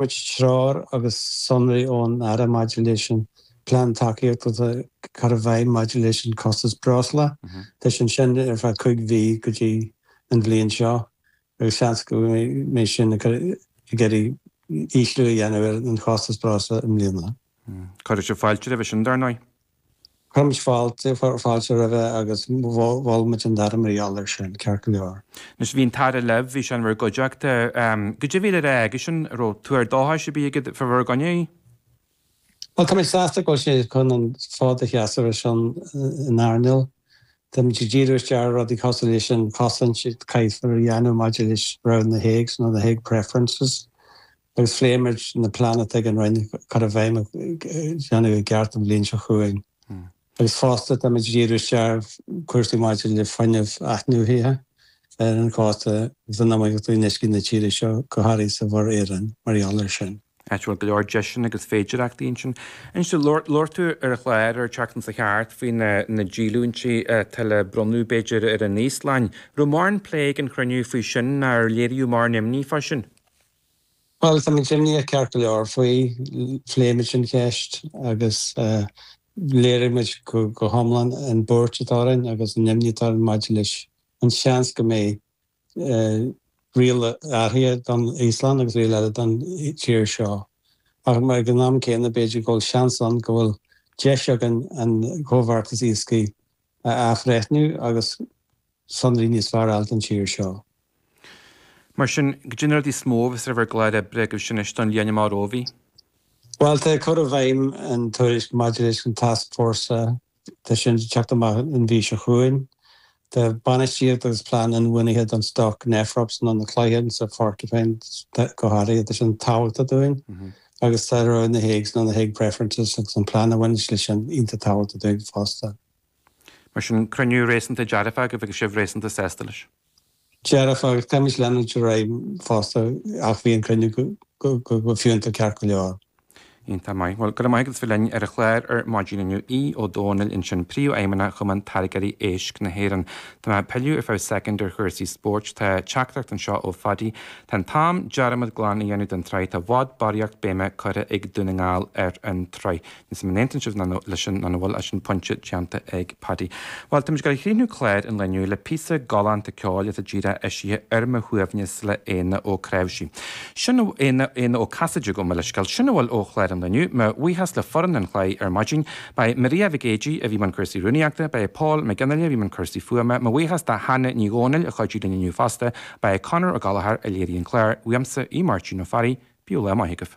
muid treoir agus sonraí ón Aire maidir leis an bplean tacaíochta atá curtha i bhfeidhm maidir leis an costas breosla. Tá sé ansin ar feadh cúig mhí go dtí an bhliain seo agus seans go mbeidh sin ag cur ag iarraidh ísliú a dhéanamh ar an chostas breosla i mbliana. Cuirfidh sibh fáilte roimhe sin, dar ndóigh. Chuir muid fáilte, chuir fáilte roimhe agus mhol muid an dá rud a gealladh ansin, ceart go leor. Anois, bhí an tAire libh, bhí sé in bhur gcuideachta. Go deimhin, an raibh aigesean, an raibh tuar dóchais ar bith aige fá bhur gcoinne? Bhuel, tá muid sásta go bhfuil sé chun an fód a sheasamh ar son an earnáil. Tá muid ag díriú isteach ar rudaí cosúil leis an chosaint a chaithfear a dhéanamh maidir le roghanna na Háige, nó na Hague preferences. agus phléigh muid an plean atá ag an Roinn cur i bhfeidhm a dhéanamh i gceart an bhliain seo chugainn agus fosta tá muid ag díriú isteach ar chúrsaí maidir le fuinneamh athnuaithe ar an chósta agus an iomaíocht in uiscí na tíre seo, go háirithe sa Mhuir Éireann, mar gheall air sin. Áit a bhfuil go leor deiseanna agus féidireachtaí ansin. Ansin, labhair tú ar an chlár an tseachtain seo chuaigh thart faoi na díolúintí atá le bronnadh, b'fhéidir, ar an Íoslainn. An raibh mórán plé ag an chruinniú faoi sin nó ar léiríodh mórán imní fá sin? Bhuel, tá muid imníoch ceart go leor faoi, phléigh muid an cheist agus léirigh muid go hiomlán an bhuairt atá orainn agus an imní atá orainn maidir leis an seans go mbeidh riail athraithe don Íoslainn agus riail eile don tír seo. Ach ag an am céanna, b'fhéidir go bhfuil seans ann go bhfuil deis againn an comhbheartas iascaigh a athbhreithniú agus sonraí níos fearr a fháil don tír seo. Mar sin, caidé na rudaí is mó a bheas ar bhur gclár oibre agaibh sin anois don bhliain amach romhaibh. Bhuel, tá cur i bhfeidhm an tuairisc maidir leis an tascfhórsa, tá sin le teacht amach an mhí seo chugainn. Tá bainistíocht agus plean inbhuanaithe don stoc Nephrops nó na cloicheáin sa Porcupine go háirithe, tá sin tábhachtach dúinn. agus tá rogha na Háige nó na Hague Preferences agus an plean a bhaineanns leis sin iontach tábhachtach dúinn fosta. Mar sin, cruinniú réasúnta dearfach a bhí agaibh, sibh réasúnta sásta leis. Dearfach, agus caithfimid leanúint ar aghaidh fosta ach bhí an cruinniú go fiúntach ceart go leor. Iontach maith. Bhuel, go raibh maith agat as bheith linn ar an chlár ar maidin inniu. Aodh Ó Domhnaill ansin, Príomhfheidhmeannach Chumann Táirgeoirí Éisc na hÉireann. Tá mé ag pilleadh ar feadh soicind ar chúrsaí spóirt. Tá teachtaireacht anseo ó Phaddy. Tá sé in am dearmad glan a dhéanamh den tsraith, tá i bhfad barraíocht béime curtha ag Dún na nGall ar an tsraith. Níl a fhios agam an aontaíonn sibh leis sin nó an bhfuil, sin pointe déanta ag Paddy. Bhuel, táimid ag gabháil a chríochnú clár an lae inniu le píosa galánta ceoil atá díreach eisithe, Ar Mo Shuaimhneas le Éanna Ó Creabhsí. Sin Éanna, Éanna Ó Casaide, gabh mo leithscéal. Sin a bhfuil ó chlár an lae inniu. Mo bhuíochas le foireann an chláir ar maidin. Ba é Maria Mhic Géidigh a bhí i mbun cúrsaí rúnaíochta, ba é Pól Mac Fhionnghaile a bhí i mbun cúrsaí fuaime. Mo bhuíochas do Hannah Ní Dhomhnaill a chuidigh linn inniu fosta. Ba é Conor O'Gallagher a léirigh an clár, uaimse, Máirtín Ó Fearraigh, oíche mhaith agaibh.